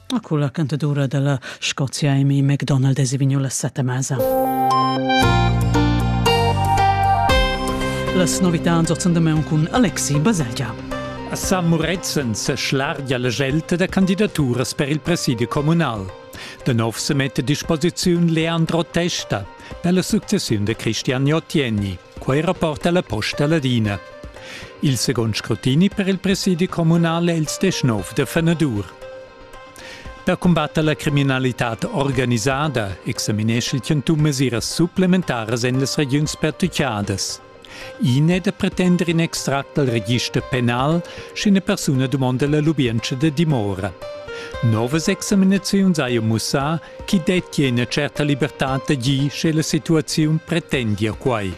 A culla cantadura della Scozia Amy MacDonald es vegniu la setta mesa. Las novità zocendament cun Alexi Baselgia. A San Murezzan se schlargia la gelta da candidaturas per il presidio comunal. De nov se mette a disposiziun Leandro Testa per la successione de Cristian Ottieni. Quei rapporta la Posta Ladina. Il second scrutini per il presidi communal è il 19 de fenadur. Per combatter la criminalitad organisada examinesce il Chantum mesiras supplementaras en las regiuns pertuccadas. Ine de pretender in extract dal register penal, sche eine persona domanda la lubienza de dimora. Novas examinaziuns haja mussà chi dettia ina certa libertà d'agir sche la situaziun pretendia quai.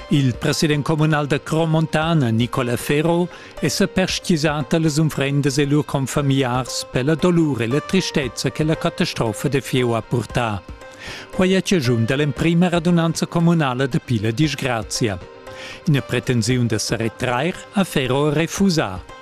Il president communal da Cromontana, Nicola Ferro, è sa perstgisà da las unfrendas e lur confamigliars per la dolur e la tristezza che la catastrofa da fieu ha purtà. Quai è chaschun da l'emprima radunanza communala da Pila disgrazia. Ina pretensiun da sa retrair ha Ferro refusà.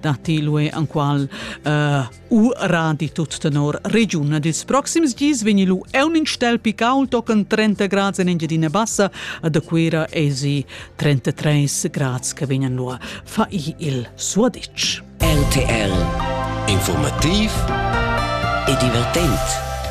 datti l'UE enqual uh, ura di tut tenor regiun. Ils proxims dis vegni lu un in stelpi caul tochen 30 grads en Engiadina Bassa, a da Cuira esi 33 grads che vegnan lu fa il suadic. LTL Informativ e divertent